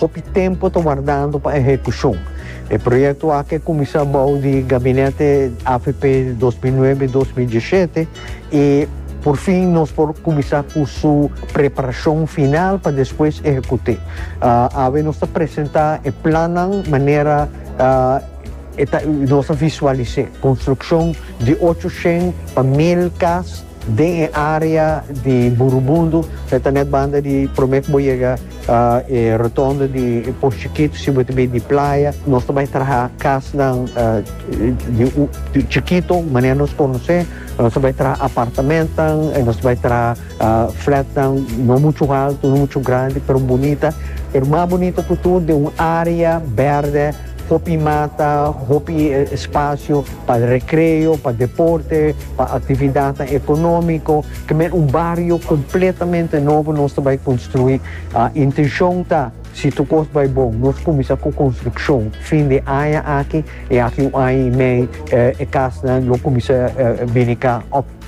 Hopi tempo ta wardando pa ehekushon. E proyekto aki a kuminsá bou di gabinete avp di dos mil nuebe, dos mil diesshete i purfin nos por kuminsá ku su preparashon final pa despues ehekut'é. Awe nos ta presentá e plannan manera e ta nos a visualis'é, konstrukshon di ocho shen pa mil kas Den e area di Burubundu, e ta net banda di prome ku bo yega e rotondo di Pos Chikito, si bo ta bai di playa, nos ta bai traha kasnan di chikito, manera nos konos'é, nos ta bai traha apartamentonan, nos ta bai traha flatnan no muchu haltu, no muchu grandi, pero bunita, pero mas bunita ku tur den un area bèrdè. Hopi mata, hopi spasio pa rekreo, pa deporte, pa aktividatnan ekonómiko, kemey un bario kompletamente nobo nos ta bai konstruí. Intenshon ta, si tur kos bai bon, nos kuminsá ku konstrukshon fin di aña aki, e aki un aña i mei e kasnan lo kuminsá bini ka.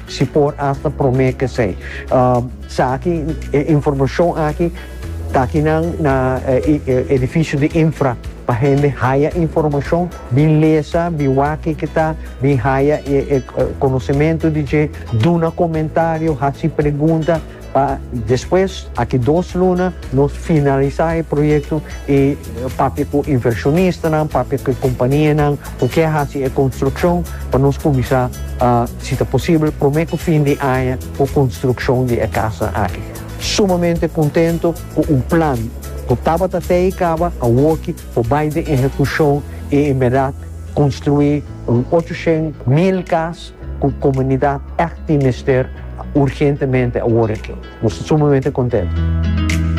Si por asta prome kesey. Sa aki e informashon aki ta aki nan na edifisio di infra pa hende haya informashon bin lesa bin wak kiki ta bin haya e konosementu di dje duna komentario hasi pregunta Pa despues, aki dos luna, nos finalisá e proyekto i papia ku invershonistanan, papia ku e kompanianan ku ke hasi e konstrukshon pa nos kuminsá, si ta posibel, promé ku fin di aña ku konstrukshon di e kasnan aki. Sumamente kontentu ku un plan ku tabata te i kaba awoki por bai den ehekushon i en bèrdat konstruí un ocho shen mil kas Cu comunidad ect tin mester urgentemente awor aki. Nos ta sumamente contento.